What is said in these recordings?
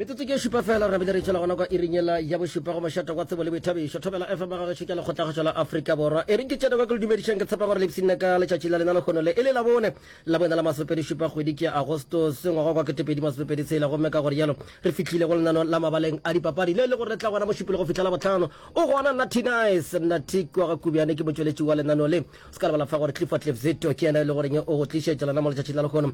metsotso ke šupa fela re bile re tšhela gona kwa irinyela ya bošupa go mašata kwa tsebo le boithabišo thobela fm ga gešo ke lekgotlakgašo la aforika borwa e re ke tšena kwa ke le dumedišang ke tshepa gore lebsinna ka letšatši la lena lekgono le e le labone la bona la masopedi šupa kgwedi ke agostos ngwaga kwa ketepedi masopedi tshela gomme ka gore jalo re fihlile go lenano la mabaleng a dipapadi le le go retla gona mošupile go fihla la botlhano o gona natinice natik wa ga kubiane ke motšweletši wa lenano le se ka lebala fa gore clifford lefzito ke yena e le goreng o go tlišetša lona mo letšatšing la lekgono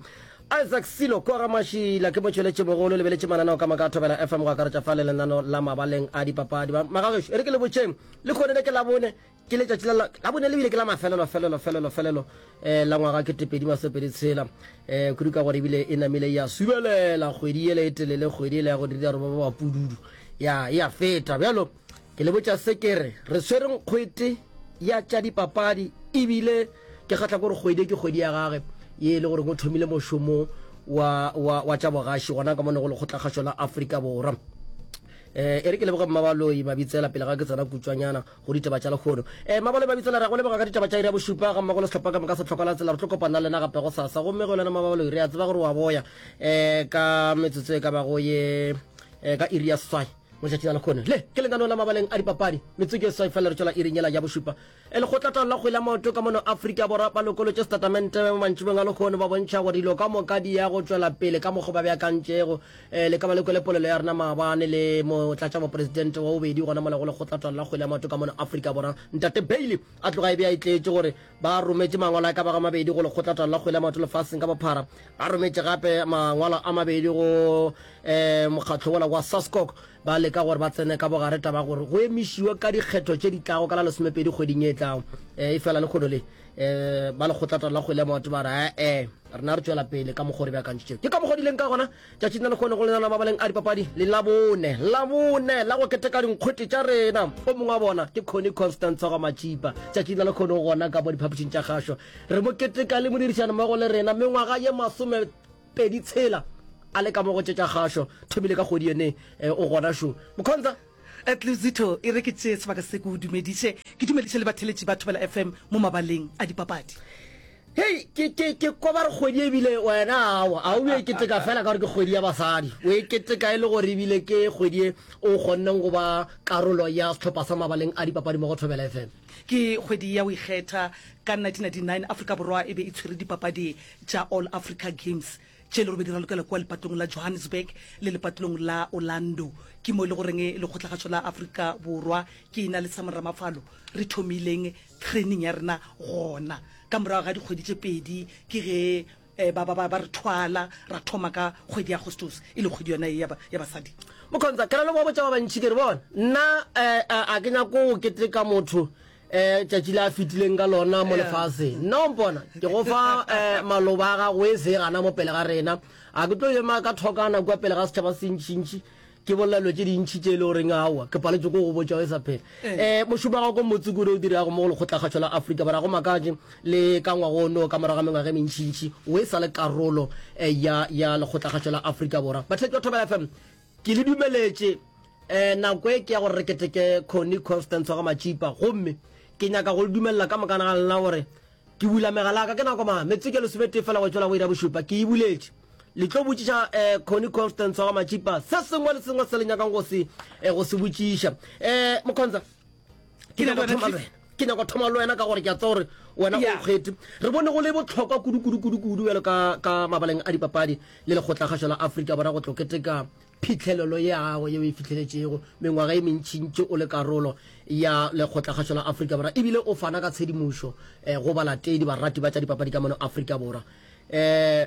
Isaac Silo kua ga Mašila. Ke motšweletšibogolo, lebeletše mananeo ka moka a Thobela FM go akaretša fa le lenano la mabaleng a dipapadi. Ba magagešo, e re ke le botšeng, le kgone le ke Labone, ke letšatši la Labone le bile ke la mafelelo, felelo, felelo, felelo eh, la ngwaga kete pedi masopedi tshela. Eh, kudu ka gore e bile e namile ya subelela kgwedi yele e telele, kgwedi yele ya go dira re ba ba pududu. Ya, ya feta, bjalo. Ke le botša se ke re, re swere nkgwete ya tša dipapadi e bile ke kgahla gore kgwedi ke kgwedi ya gage ye e le goreng o thomile mošomo wa, wa, wa tša bogaši gona ka monego lekgotlakgašo la Afrika Borwa. Eh, e re ke leboge Mmabaloi Mabitsela pele ga ke tsena kutswanyana go ditaba tša lekgono. Eh, Mmabaloi Mabitsela, re a go leboga ka ditaba tša iri ya bošupa ga mmogo le sehlopha ka moka se tlhoka la tsela. Re tlo kopana lena gape go sasa. Gomme go lena Mmabaloi, re a tseba gore wa boya eh, ka metsotso e ka bago ye eh, ka iri ya seswai. Motšatši a lekgono le ke lenaneo la mabaleng a dipapadi metsotso e seswai fela re tšwela iring yela ya bošupa. E lekgotlataolo la kgwele ya maoto ka mono Afrika Borwa ba lokolotše setatamente mantšibong a lekgono ba bontšha gore dilo ka moka di ya go tšwela pele ka mokgo ba beakantšego. Le ka ba le kwele polelo ya rena maabane le motlatšamopresidente wa bobedi gona mola go lekgotlataolo la kgwele ya maoto ka mono Afrika Borwa, Ntate Bailey. A tloga e be a itletše gore ba rometše mangwalo a ka bago a mabedi go Lekgotlatano la Kgwele ya Maoto Lefaseng ka Bophara. A rometše gape mangwalo a mabedi go um mokgatlo wola wa SASCOC ba leka gore ba tsene ka bogare taba gore go emišiwe ka dikgetho tše di tlago ka la lesomepedi kgweding e tlago. Um e fela lekgono le um ba Lekgotlatano la Kgwele ya Maoto ba re, Ee, rena re tšwela pele ka mokgwa o re beakantšitšego. Ke ka mokgwa o di leng ka gona. tšatši na lekgone go lenana mabaleng a dipapadi le labone labone la go keteka dinkgwete tša rena o mongwe wa bona ke conny constant tshwagwa matšipa tšatši na lekgone go gona ka mo diphapošing tša kgašo re mo keteka le modirišani mmogo le rena mengwaga ye masome pedi tshela a le ka mo go tšetša kgašo thomile ka kgodi yone eh, o gona šo mokgontsha At Luzito e re ke tšee sebaka se ke o dumediše, ke dumediše le batheletši ba Thobela FM mo mabaleng a dipapadi. Hei, ke, ke, ke kwa ba re kgwedi ebile wena awa, a o bjo e keteka fela ka gore ke kgwedi ya basadi. O e keteka e le gore ebile ke kgwedi e o kgonneng go ba karolo ya sehlopha sa mabaleng a dipapadi mo go Thobela FM. Ke kgwedi ya go ikgetha. Ka 1999 Afrika Borwa e be e tshwere dipapadi tša All Africa Games. Tše le robedi ra lokela kua lepatolong la Johannesburg le lepatolong la Orlando. Ke mo e le goreng lekgotlagatsho la Afrika Borwa ke ena le Sam Ramafalo re thomileng training ya rena gona. Ka morago ga dikgwedi tše pedi ke ge eh, ba, ba, ba, ba re thwala ra thoma ka kgwedi ya Agostose e le kgwedi yona ye ya, ba, ya basadi. Mokhonza, ke na le bobo tša ba bantši ke re bona. Nna eh, a, a ke nyako go keteka motho eh tšatši le a fetileng ka lona mo lefase nna o mpona ke go fa eh maloba a gago e se gana mo pele ga rena a ke tlo yema ka thokana kwa pele ga setšhaba se ntšhintšhi ke bolela dilo tše dintšhi tše e le goreng aowa ke paletse ko go botša e sa phela um eh. eh, mošomo wa gago ko motse kudu o dirago mo go lekgotlakgatšho la aforika bara go makatše le ka ngwago ono ka morago ga mengwaga e mentšhintšhi o e sa le karolo um ya lekgotlakgatšho la aforika borwa batlhaki ba thobela fm ke le dumeletše um nako e ke ya gore re keteke conny constance wa ga matšipa gomme ke nyaka go le dumelela ka mokana ga lena gore ke bula megala ka ke nako ma metsotso ke lesometee fela go tšwela go ira bošupa ke e buletše le tlo botšiša um eh, conny constance wa ga matšipa se sengwe le sengwe se le nyakang go se eh, go se botšiša um eh, mokgontsha ke nyaka thoma le wena ke nyaka thoma le wena ka gore ke a tsa gore wena o kgwete re bone go le botlhokwa kudu-kudu-kudu-kudu bjalo ka mabaleng a dipapadi le lekgotlakgašo la aforika borwa go tloketeka phitlhelelo ye gago yeo e fitlheletšego mengwaga e mentšintši o le karolo ya lekgotlakgašo la aforika borwa ebile o fana ka tshedimošo um go balatedi barati ba tša dipapadi ka mono aforika borwa um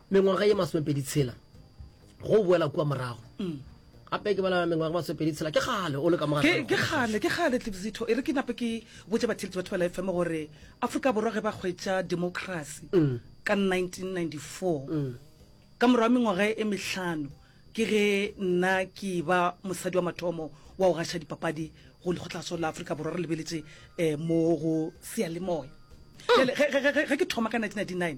mengwaga ye masomepedi tshela go boela kua morago mm. gape ke bala mengwaga masomepedi tshela ke gale o le ka mogake gale ke gale tlebzitho e re ke nape ke botse batheletsi batho ba la fm gore aforika borwa ge ba kgwetsa democracy mm. ka 1994 mm. ka morago mengwaga e mehlano ke ge nna ke ba mosadi wa mathomo wa go gaša dipapadi go lekgotlaso la aforika borwa re lebeletse um mo go sealemoya ge ke thoma ka 1999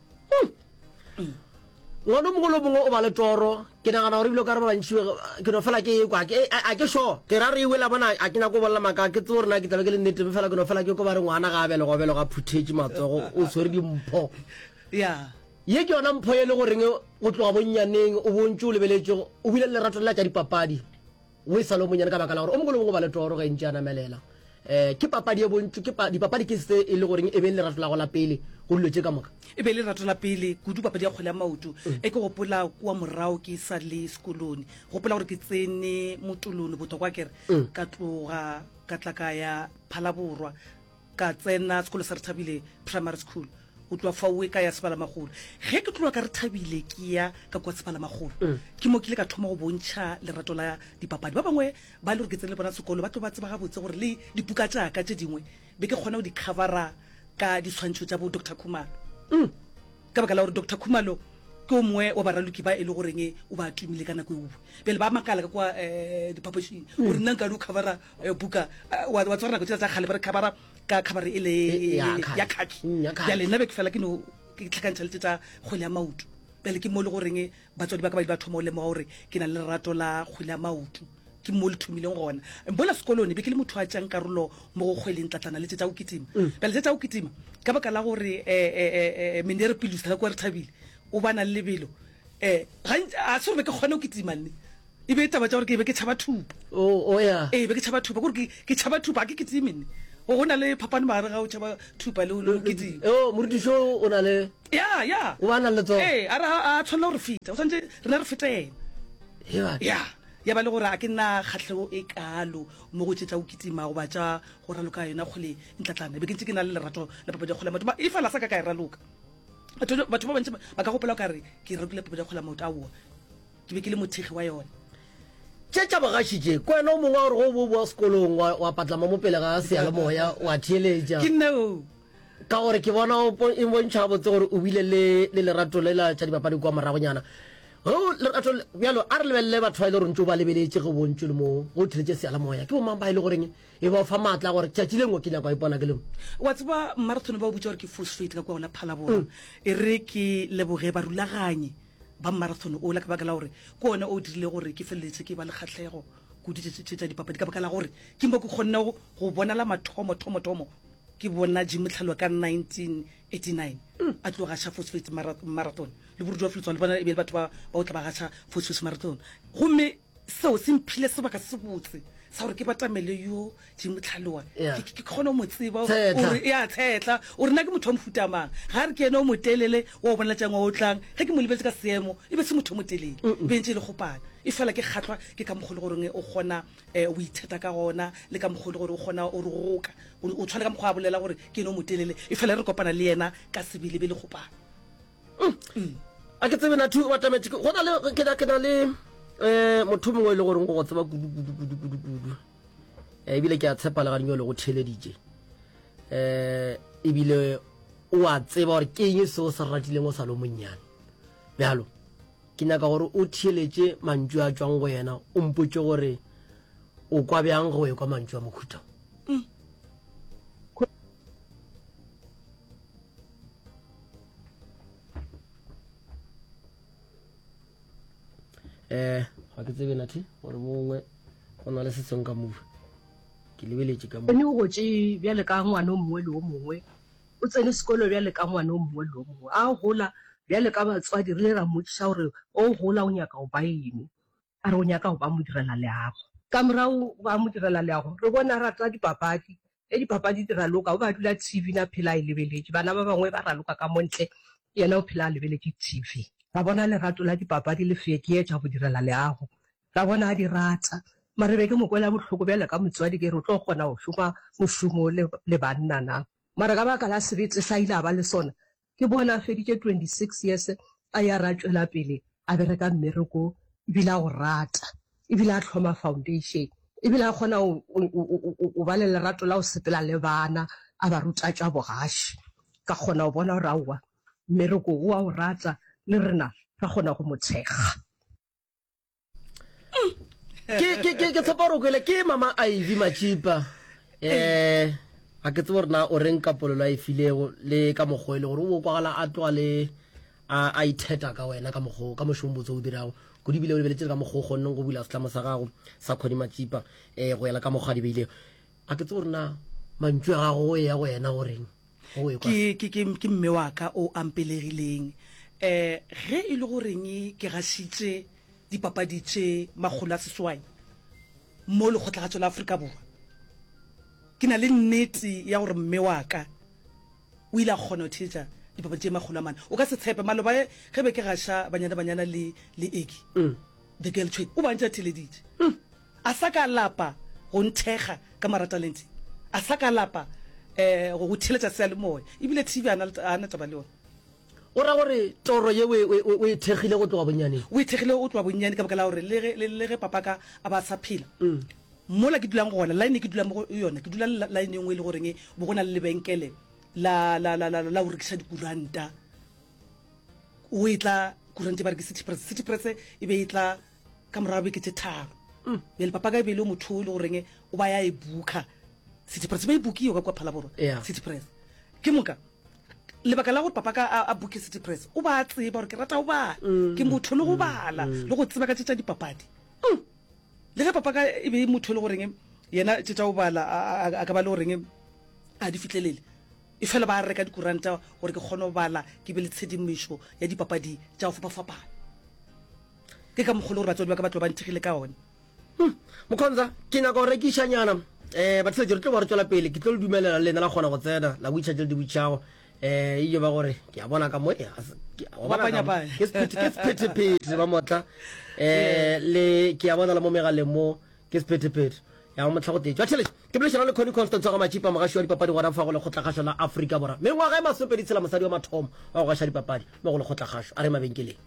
ngwana o mongwe le mongwe o ba le toro ke nagana gore ebile o ka re ba bantši ke no fela ke e kwa a ke sure ke ra re e wela bona a ke nyako o bolela maka ke tse gore na ke tlabe ke le nnete fela ke no fela ke ko ba re ngwana ga a belega o belega phuthetše matsogo o tshwere dimpho ye ke yona mpho ye le goreng go tloga bonnyaneng o bontse o lebeletšego o bile le lerato lela tša dipapadi O e sa le o monyane ka baka la gore o mogolo bongwe ba le toro ge ntši a namelela. Eh, ke papadi ye bontši, ke pa, dipapadi ke se e le goreng e be e le lerato la go la pele go dilo tše ka moka. E be e le lerato la pele kudu papadi ya kgole ya maoto. Mm. E ke gopola kua morago ke sa le sekolone. Gopola gore ke tsene motolone botokwa kere mm. ka tloga ka tla ka ya Phalaborwa Ka tsena sekolo sa Rethabile Primary School. Go tloa faoe ka ya Sebalamagolo. Ge ke tloa ka Rethabile ke ya ka kua Sebalamagolo, ke mo ke ile ka thoma go bontšha lerato la dipapadi. Ba bangwe ba e le gore ke tsene le bona sekolo ba tlo ba tseba gabotse gore le dipuka tša ka tše dingwe be ke kgona go di covera ka diswantšho tša bo Doctor Khumalo. Ka baka la gore Doctor Khumalo ke o mongwe wa baraloki ba e le goreng o ba tumile ka nako eowe. Bjale ba makala ka kua diphapošing gore nna nkare o covera Eh, buka eh, wa wa tswara nako tsela tsa kgale ba re khabara ka khabare e le Eh, ya khaki. ya khaki Mm, ya khaki. bjale nna be ke fela ke no ke tlhakantšha lete tsa kgwele ya maoto bjale ke mo e le goreng batswadi ba ka ba ile ba thoma o lemoga gore ke na le lerato la kgwele ya maoto ke mo le thomileng gona bola sekolone be ke le motho a tšang karolo mo go kgweleng tlatlana lete tsa go kitima Mm. bjale tse tsa go kitima ka baka la gore um menere pilusa ka kwa re thabile o ba na le lebelo um gantsi a se gore be ke kgone go kitima nne E be taba tša gore ke be ke tšhaba thupa. O, o ya. Ee, be ke tšhaba thupa. Kore ke, ke tšhaba thupa, ga ke kitime ne. Go go na le phapano magare ga o tšhaba thupa le le kitime. Yo, morutišo o na le. Ya, ya. O ba na le tsona. Ee, a re a a tshwanela go re feta. O tshwanetse rena re fete ena. Heba. Ya. Ya ba le gore a ke nna kgatlhego e kalo mo go tše tša go kitima goba tša go raloka yona kgole ntlatlana. Be ke ntse ke na le lerato la papadi ya kgole ya maoto. Mara e fela a sa ka ka e raloka. Batho, batho ba bantši ba ka gopola o ka re ke ralokile papadi ya kgole ya maoto. Aowa. Ke be ke le mothekgi wa yona. Tše tša bogaši tše, ke wena o mongwe wa gore go bo o boa sekolong wa, wa patlama mo pele ga seyalemoya wa theeletša. Ke nna oo. Ka gore ke bona o po- e bontšha gabotse gore o bile le, le lerato le la tša dipapadi kwa moragonyana. Ge o lerato le- bjalo, a re lebelele batho ba e le gore ntse o ba lebeletše ge o bontšwe le mo ge o theeletše seyalemoya. Ke bomang ba e le goreng e ba o fa maatla a gore tšatši le nngwe ke nyaka go ipona ke le mo? wa tseba marathon ba o bitša gore ke full straight ka kua go la phalabora e re ke leboge barulaganyi Ba marathon ola ka baka la gore ke ona o dirile gore ke feleletse ke ba le kgahlego kudu tše tša dipapadi ka baka la gore ke mo ke kgonne go bona la mathomo thomo thomo ke bona Jim Motlhaloa ka 1989 a tlo gaša Phosphate Marathon le Borudi wa Filetswana le bona e be le batho ba ba o tla ba gaša Phosphate Marathon gomme Seo se mphile sebaka se botse sa gore ke batamele yo dingwe tlhaloa ke kgone o mo tseba gore e a tshetla o rena ke motho wa mofutamang ga re ke ene o motelele wa o bonaletšang wa o tlang ge ke mo lebetse ka seemo e be se motho o motelele bentse e le gopana e fela ke kgatlhwa ke ka mogolo goreng o kgona eh, o itheta ka gona le ka mogolo gore o kgona o re goka o tshwane ka mokgwa a bolela gore ke ene o motelele e fela re kopana le yena ka sebelebele gopana a ke tsebe nathu wa tametse go na le ke na ke na le eh motho mongwe e le goreng go go tseba kudu kudu kudu kudu kudu eh, ebile ke a tshepa le ganyo le go theleditše eh ebile o a tseba gore ke eng se o se ratileng o sa lo monnyane bjalo ke nyaka gore o theeletše mantšu a tswang go yena o mpotse gore o kwa bjang go ekwa mantšu a mokhuta eh ga ke tsebe nathi gore mongwe go na le setsong ka move ke lebeletše ka ene o gotše bjale ka ngwana o mongwe le o mongwe o tsene sekolo bjale ka ngwana o mongwe le o mongwe a gola bjale ka batswadi re le ra mmotsiša gore o gola o nyaka go ba ene a re o nyaka go ba modirela leago ka morago ba modirela leago re bona rata dipapadi Ge dipapadi di raloka, o be a dula TV ne a phela a e lebeletše. Bana ba bangwe ba raloka ka mo ntle, yena o phela a lebeletše TV. Ra bona lerato la dipapadi le feekeetša go direla leago. Ra bona a di rata. Mara be ke mo kwela bohloko bjale ka motswadi, ke re, O tlo kgona go šoma mošomo le banna na? Mara ka baka la sebete sa a ile a ba le sona, Ke bone a feditše 26 years a ya re a tšwela pele a bereka mmereko ebile a o rata ebile a tlhoma foundation ebile a kgona o ba le lerato la go sepela le bana a ba ruta tša bogaši ka kgona go bona gore aowa mmereko o a o rata le rena ra kgona go mo thekga ke tshepa gore o kwele ke mama iv machipa um ga ke tse gore na o reng ka polelo a e filego le ka mokgwa e le gore o bo kwagala a tloga le a itheta ka wena ka mokgwa ka mošong botse o dirago kudu ebile o lebeletse ka mokgwa o kgonneng go bula setlamo sa gago sa kgodi machipa um go yela ka mokgwa di beilego a ke tse gore na mantšu a gago o ya go yena goreng ke mme wa ka o ampelegileng um ge e le goreng ke gašitše dipapadi tše makgolo a seswai mo lekgotlhagatšo la aforika borwa ke na le nnete ya gore mme wa ka o ile a kgona go theetša dipapadi tše makgolo a mane o ka se tshepe maloba ge be ke gaša banyana banyana le eki mm. the girl tshwedi o bantša theleditše mm. A sa ka lapa go nthekga ka maratalente, a sa ka lapa go go theeletša seyalemoya, e bile TV a a na taba le yona. O ra gore toro ye o e thekgile go tloga bonnyaneng? O e thekgile go tloga bonnyane ka baka la gore le ge papaka a ba a sa phela, mola ke dulang gona, line e ke dulang mo go yona, ke dula line e nngwe e le goreng bo go na le lebenkele la go rekiša dikuranta, o e tla kuranta e ba re ke City Press, City Press e be e tla ka morago beke tse tharo mm. bjale papa ka ebele o motho o le goreng o ba ya e booka city press ba e bookiyo ka kua phalaborwa city press ke moka lebaka la gore papa ka a booke city press o ba tseba gore ke rata go bala mm. ke motho le go mm. bala le go tseba ka tse tsa dipapadi le ge papa ka e be motho le goreng yena tse tsa go bala a ka ba le goreng a di fitlhelele e fela ba reka dikuranta gore ke kgone go bala ke be le tshedimošo ya dipapadi tsa go fapafapana Ke ka mokgole gore batswadi ba ka ba tlo ba nthekgile ka one. Hum, Mokhonza, ke nyaka go rekiša nyana. Eh, batheletši, re tlo ba re tšwela pele. Ke tlo le dumelela le lena la kgona go tsena, la witšha tše le di witšhago. Eh, e yo ba gore, ke a bona ka mo, eh, a se- ke- wa bona ka mo. Bapanyapanya. Ke sephethe- ke sephetephete, ba motla. Eh, le, ke a bona le mo megaleng mo, Ke sephethephethe ya go mohla go tetšwa tšhelete ke bolešana le Connie Constance wa ga Matšipa, mogaši wa dipapadi gona fa go lekgotlakgašo la Afrika Borwa. Mengwaga e masopedi tshela mosadi wa mathomo wa go gaša dipapadi mo go lekgotlakgašo a re mabenkeleng.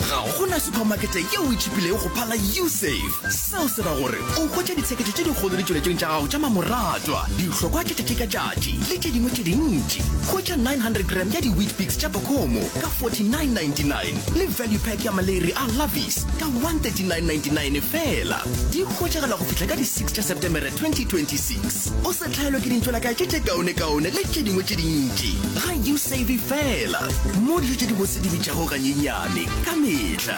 Ga go na supamakete yeo e tšhipilego go phala U-Save. Seo se ra gore o hwetša ditsheketšo tše dikgolo ditšweletšong tša gago tša mamoratwa, dihlokwa tša tšatši ka tšatši le tše dingwe tše dintši. Hwetša 900 g ya di-Weet-Bix tša Bacomo ka 49.99 le value pack ya maleiri a Lavis. ka 139.99 fela di hwetšagala go fihla ka di-6 tša septemere 2026 o se tlhaelwe ke dintšolakae tše tše kaonekaone le tše dingwe tše dintši ga you save fela mo dijo tše di bose di bitšago ganyenyane ka metlha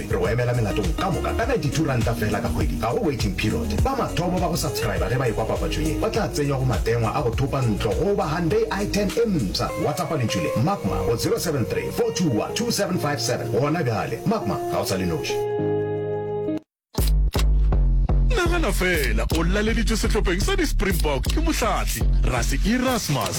Re go emela melatong ka moka ka R92 feela ka kgwedi. Ga go waiting period. Ba mathomo ba go subscriber ge ba ekwa papatšo ye ba tla tsenywa go matengwa a go thopa ntlo goba Hyundai i10 e mpsha. WhatsAppa lentšu le, Magma, go 073 421 2757 gona bjale. Magma, ga o sa le noši. Nagana feela, o laleditšwe sehlopheng sa di-Springbok ke Mohlahli, Rassie Erasmus.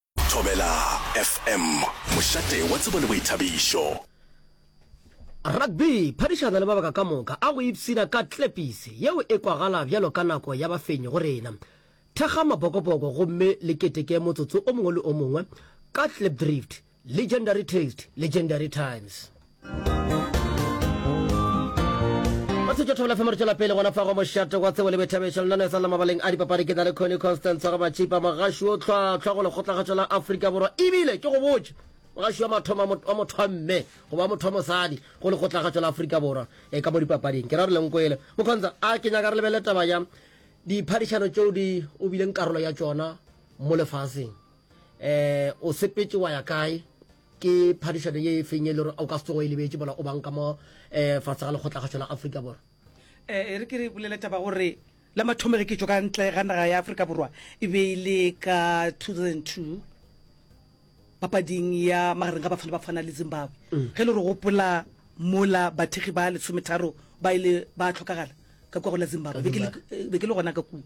Thobela FM, mošate wa tsebo le boithabišo. Rugby, phadišana le mabaka ka moka a go ipshina ka tlepise yeo e kwagala bjalo ka nako ya bafenyi go rena. Thekga mapokopoko gomme le keteke motsotso o mongwe le o mongwe ka Klipdrift, Legendary Taste, Legendary Times. ba se tšotho bela femore tšwela pele gona fa go mošate wa tsebo le bethabešo lenano e sa la mabaleng a dipapadi ke na le cony constance ga matšhipa mogaši o tlhwatlhwa go lekgotlagatšo la afrika borwa ebile ke go botse mogaši wa mathoma wa motho wa mme goba motho wa mosadi go lekgotlagatšo la afrika borwa e ka mo dipapading ke ra re lenkwele mokgontsha a ke nyaka re lebele taba ya diphadišano tšeo di o bileng karolo ya tšona mo lefaseng um o sepetse wa ya kae Ke phadišano ye e feng ye le gore o ka se tsogo e lebetše mola o bang ka mo um fatshe ga lekgotlakgašo la Afrika Borwa? Eh, e re ke re bolele taba gore la mathomo ge ke tšo ka ntle ga naga ya aforika borwa e be e le ka 2002 papading ya magareng ga bafana bafana le zimbabwe mm. ge le re gopola mola bathegi ba lesometharo ba ile ba tlhokagala ka kwa go la zimbabwe be ke le gona ka kua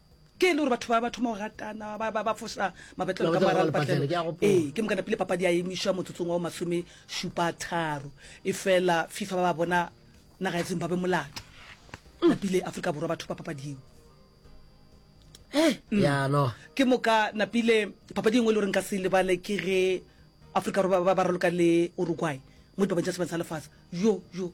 Ke e le gore batho ba ba thoma go ratana ba ba ba fosa mabetlelo ka mara lepatlelo ee ke moka napile papadi ya emišwa motsotsong wa masome šupa tharo e fela fifa ba ba bona naga ya zimbabwe molato napile aforika borwa batho ba papadi eo eh, mm. ya no ke moka napile papadi engwe e le goreng ka se lebale ke ge aforika borwa ba raloka le uruguay mo dipapadi tsa sebeng sa lefatshe yo yo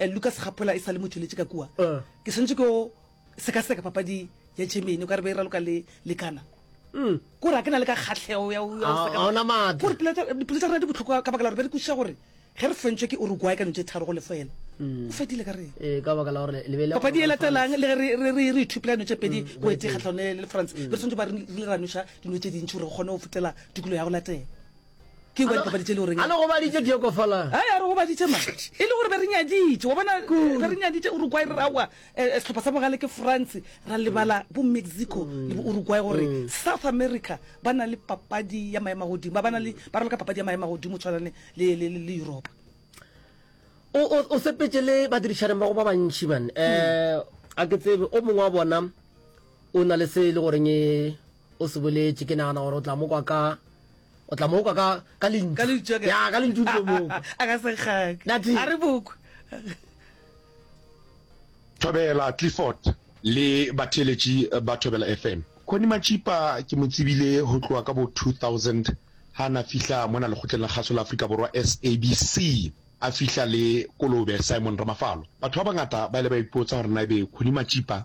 Eh, Lucas Gapola e sa le mo tšweletše ka kua. Eh. Ke swantšwe ke o sekaseka papadi ya Germany, o ka re be e raloka le le Ghana. Mm. Kore a ke na le ka kgatlhego ya o- ya o Ah, seka- ha ona matla. Kore pelo tša- dipelo tša rena di bohloko ka baka la gore be re kwešiša gore ge re fentšwe ke Uruguay ka no tše tharo go lefo yena. Mm. O fedile ka reng? Eh, ka baka la gore le be le- papadi e latelang le ge re- re- re re ithupela dino tše pedi Mm, go ete kgatlhano le le france re swantse ba re re le ranoša dino tše dintši gore re kgone go fetela tukulo ya go latela ke kwa dipapadi tše le goreng a le gobaditše di yoko fala a ya re gobaditše ma e le gore be re nyaditše wa bona be re nyaditše uruguay re rawa eh, eh, sehlopha sa bogale ke france ra lebala bo mexico le bo uruguay gore mm. south america ba na le papadi ya maema godimo ba ba na le ba raloka papadi ya maema godimo tshwanane le europa o sepetse le badirišaneng ba go ba bantšhi man um mm. eh, a ke tsebe o mongwe wa bona o na le se e le goreng e o se boletše ke nagana gore o tla mo kwa ka o tla mo kwa ka ka lentšu Ka lentšu, okay. ya ka lentšu tlo mo kwa a ka sekgaka Nati. a re boko Thobela Clifford le batheeletši ba Thobela FM. Connie Matšipa ke mo tsebile ho tloha ka bo 2000 ha na fihla mona Lekgotleng la Kgaso la Afrika Borwa, SABC, a fihla le kolobe Simon Ramafalo. Batho ba bangata ba ile ba ipotsa hore na ebe Connie Matšipa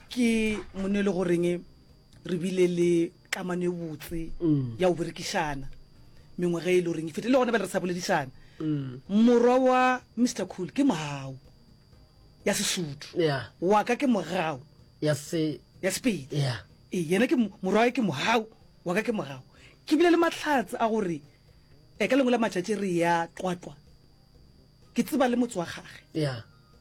ke mone e le goreng re bile le kamano e botse mm. ya go berekišana mengwe ge e le goreng e fete le gone ba le re sa boledišana mm. morwa wa mr cool ke mogao ya sesotho wa ka ke mogao ya sepedi ee yena ke morwa ke mogao wa ka ke mogao ke bile le matlhatse a gore e ka lengwe la matšatši re ya tlwatlwa ke tseba le motse wa gage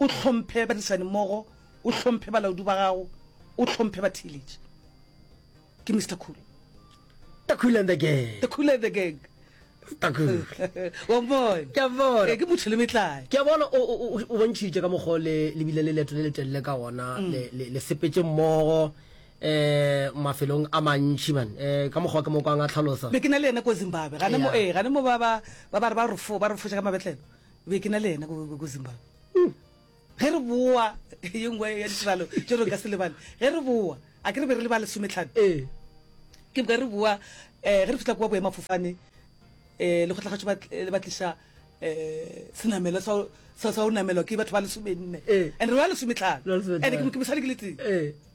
o hlomphe badirišanimmogo, o hlomphe balaodi ba gago, o hlomphe batheeletši. Ke Mister Cool. The Cool and the Gang. The Cool and the Gang. Mister Cool. Wa bona? Ke a bona. Ke motho le metlae. Ke a bona o o bontšhitše ka mokgwa le le bile le leeto le le telele ka ona mm. le le le sepetse mmogo eh mafelong a mantši man eh ka mokgwa ke mo kwang a tlhalosa be ke na le ena ko Zimbabwe gane mo eh gane mo ba ba ba ba re ba re fo ba re fo ka mabetlelo be ke na le yena ko zimbabwe hmm. ge re boa ye nngwe ya ditiralo tse re ka se lebale ge re boa a ke re be re le ba lesometlhano ee. ke boka re boa um ge re fitlha kwa boemafofane um eh, lekgotlakgatso le ba tlisa um senamelo sa go namelwa ke batho ba lesomenne ee. and re ba lesometlhano and ke mosadi ke le teng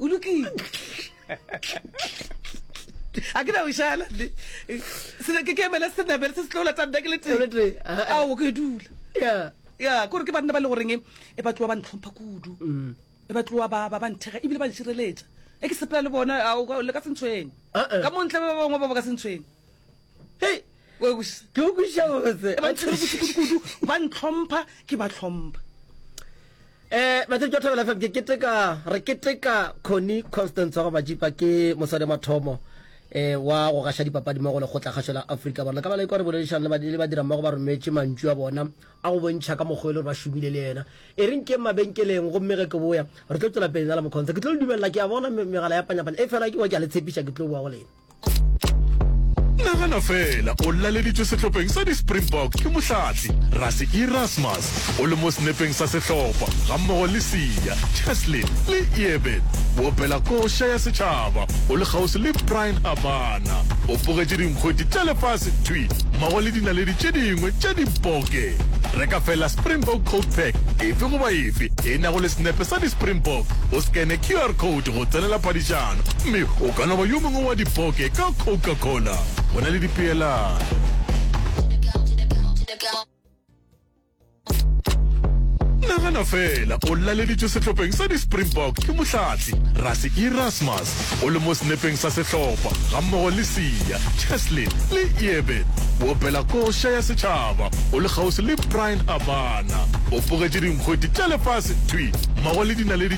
o lokile a ke na o šala sena ke kemela senabele se se tlola tsa nna ke le tee ao ke dula ya kore ke banna ba le goreng e ba tloa ba ntlhompha kudu mm. e ba tloa ba ba nthega ebile ba nšireletša e ke sepela le bona le ka sentshweng ka montle ba bangwe ba ba ka sentshweng hei ke okwešiša gobotse ba ntshwere bošikudikudu ba ntlhompha ke ba tlhompha Eh, batho ke thabela fm ke keteka re keteka Connie Constance wa majipa ke mosadi mathomo eh wa go gasha dipapadi mo go le gotla gasho la Afrika bona ka bala ikwa re boledišana le badile ba dira mmogo ba rometse mantšu a bona a go bontšha ka mokgwa le ba šomile le yena e reng ke mabenkeleng go mmege ke boya re tlo tswela pele na le mokhontsha ke tlo le dumelela ke a bona megala ya panyapanya e fela ke wa ke a le tshepiša ke tlo boa go lena nagana fela o laleditswe sehlopheng sa di-springbok ke mohlatli rase erasmus o le mo senepeng sa sehlopha gammogo le sia cheslin le eben boopela koša ya setšhaba o le kgauswi le brian habana o bogetše dinkgweti tša lefase thwi mmogo le dinaledi tše dingwe tša diboke reka fela springbok codepack efe goba efe e nago le senepe sa di-springbok o scane qr code ke go tsenela paditšana gomme o ka no ba yo mongwe wa dipoke ka Coca-Cola. Go na le dipeelano. Nagana fela, o laleditšwe sehlopheng sa di-Springbok ke Mohlatli Rassie Erasmus. O le mo senepeng sa sehlopha gammogo le Siya, Cheslin le Eben. O opela koša ya setšhaba, o le kgauswi le Brian Habana. O pogetše dinkgweti tša lefase thwi mmogo le dinaledi tša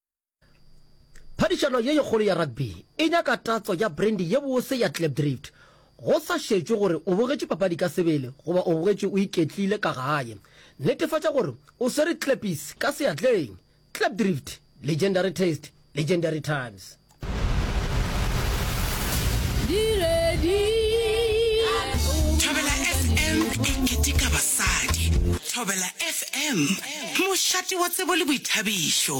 Phadišano ye kgolo ya rugby e nyaka tatso ya brandy ye bose ya Klipdrift. Go sa šetšwe gore o bogetše papadi ka sebele goba o bogetše o iketlile ka gae, netefatša gore o swere Klippies ka seatleng. Klipdrift, legendary taste, legendary times. Thobela FM, mošate wa tsebo le boithabišo.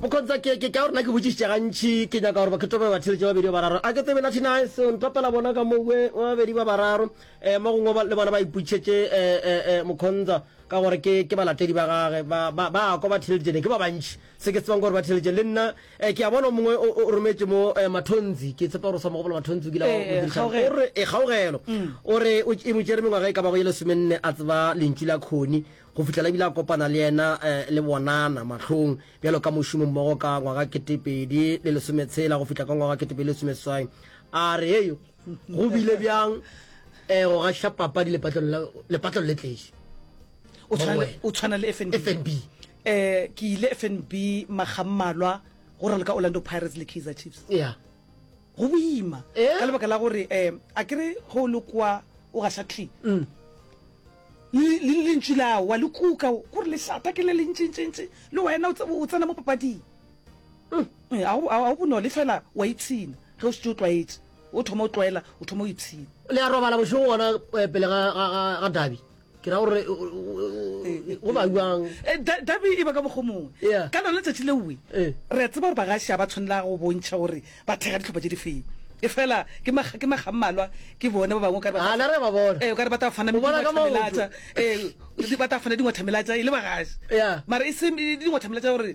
bokontswa ke ke ka gore na ke botšišitše gantši ke nyaka gore bakhetho ba batheletše babedi ba bararo a ke tsebe nathi nice o ntapela bona ka mowe wa babedi ba bararo um mo gongwe le bona ba iputšhetše um eh, eh, eh, mokhontsa Ka gore ke, ke balatedi ba Gage. Ba, ba, ba a kwa, ba theeleditšene. Ke ba bantši, se ke tsebang ke gore ba theeleditšene. Le nna, eh, ke a bona o mongwe o, o rometše mo, eh, Mathonzi. Ke tshepa gore o sa mo gopola Mathonzi, o kile a o Ee, diriša. O kgaogelo. re, e kgaogelo. O re, o, e mo tšere mengwaga e ka bago ye lesomenne a tseba Lentšu la Connie, go fihlela e bile a kopana le yena, eh, le bonana, mahlong, bjalo ka mošomommogo ka ngwaga keteepedi le lesometshela go fihla ka ngwaga keteepedi le lesomeseswai. A re, Hei, go bile bjang eh go gaša papadi lepatlong le tleše o tshwana le fnb eh ke ile fnb magammalwa go raloka orlando pirates le kaizer chiefs yeah go boima eh? ka lebaka la gore um a kere go o lekoa o gaša clean mm. le lentši lawa le kuka gore lešata ke le lentsentšentše le wena o tsena mo papading Ga go bonolo, efela o a ipshina. Ge o šetše o tlwaetše, o thoma o tlwaela, o thoma o ipshina. Le a robala bošego gona pele ga dabi, ke ra gore go ba bjang? Dabi e ba ka mokgwa o mongwe. Ka lona letšatši leowe, re a tseba gore bagaši ga ba tshwanela go bontšha gore ba thekga dihlopha tše di feng. Efela ke makga a mmalwa ke bone ba bangwe o ka re ba tla fana dingwathamelatša e le bagaši, mara e se dingwathamelatša gore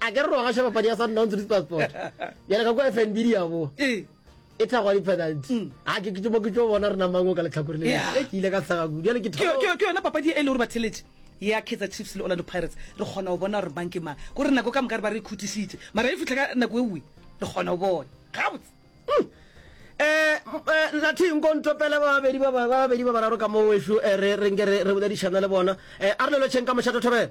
a ke re ro gaša papadi ya sundowns le spasport bjale ka kwa fnb di ya boa e thagwa di-penalty mm. a ke ke mo ke tso bona re namango ka letlhakore le e ke ile ka tshaga kudu jale ke yona papadi e le gore ba theletše ya kaizer chiefs le orlando pirates re kgona go bona gore mang ke mang gore nako ka moka re ba re khutišitše mara e fitlha ka nako e nngwe re kgona go bona gabotse um nathing kontopele babedi babedi ba bararo ka mo weso eh, re nke re boledišana le bona um eh, a re lelotšheng ka mošato thobela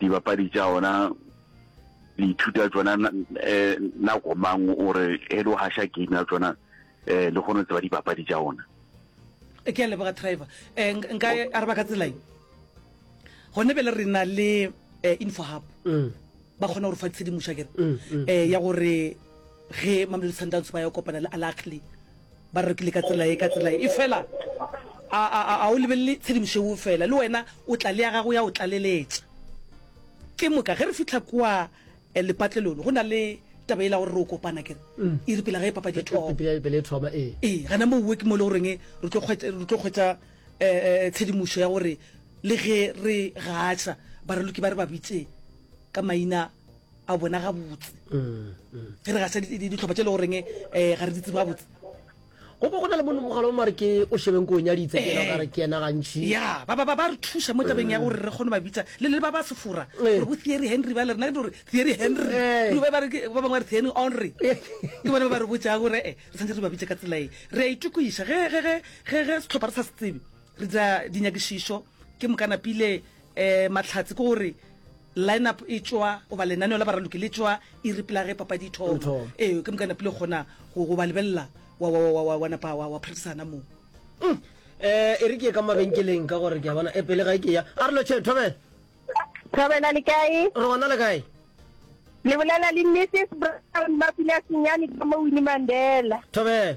dibapadi tša ona le ithuta tšona eh, nako mang o re e le o hasha game ya tšona eh, le kgone tseba dibapadi tša ona e ke a leboga driver um nka araba ka tselae gone be le re na le um info hub mm. ba kgona gore fa tshedimoša kere um ya gore ge mamelodi sundowns ba ya kopana le alakli Ba re rekile ka tsela ye, ka tsela ye. Efela a, a, a, a o lebelele tshedimošo yeo fela. Le wena o tla le ya gago ya o tlaleletša. Ke moka ge re fihla kua eh, lepatlelong, go na le taba yela ya gore re o kopana, ke re, e re pele ga e papadi e thoma. Pele, pele e thoma, ee. Ee, gana moo wo ke mo e le goreng re tlo kgwetša, re tlo kgwetša eh, eh, tshedimošo ya gore le ge re gaša, Baraloki ba re ba bitše ka maina. a bona gabotse ge re ga se ditlhopha tse e le goreng um eh, ga re ditse gabotse go bo go na le mone mogala o mare ke o shebeng ko o nyaditse ke ka re ke ena gantšhi ya ba ba ba ba re thuša mo tabeng ya gore re kgone ba bitsa le le ba ba sefora gore bo theory henry ba le rena ke gore theory henry Eh. Rube ba re ke- ba bangwe ba re theory henry ke bone ba ba re botsang gore e re tshwanetse re ba bitse ka tsela e re a itokoiša ge ge- ge- ge- ge setlhopha re sa se tsebe re dira dinyakišišo ke mokanapile Ee, Mahlatse, ke gore line-up e tšwa goba lenaneo la baraloki le tšwa iri pela ge papadi e thoma. Ee, ke moka napile kgona go ba lebelela wa napa wa phedisana moo. Umm, ee, e re ke ye ka mabenkeleng ka gore ke a bona, ee, pele ga ke ya, a re lo tšheng, Thobela. Thobela, le kae? Re gona le kae? Le bolela le Mrs. Brown, Mapula Senyane ka mo Winnie Mandela. Thobela.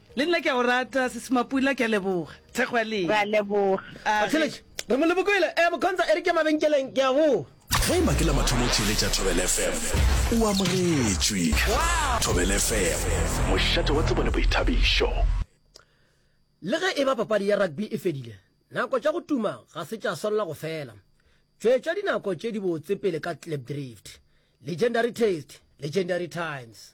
Le nna ke a o rata sesi Mapula ke a leboga thekgo ya lena. Re a leboga. A re. Re molemo ko ele, eh Mokhonza e re ke mabenkeleng ke a go. Ge e ba ke la mathomo o theeletša Thobela FM, o amogetšwe. Thobela FM, mošate wa tsebo le boithabišo. Le ge e ba papadi ya rugby e fedile, nako tša go tuma ga se tša swanela go fela. Tšwetša dinako tše dibotse pele ka Klipdrift, Legendary Taste, Legendary Times.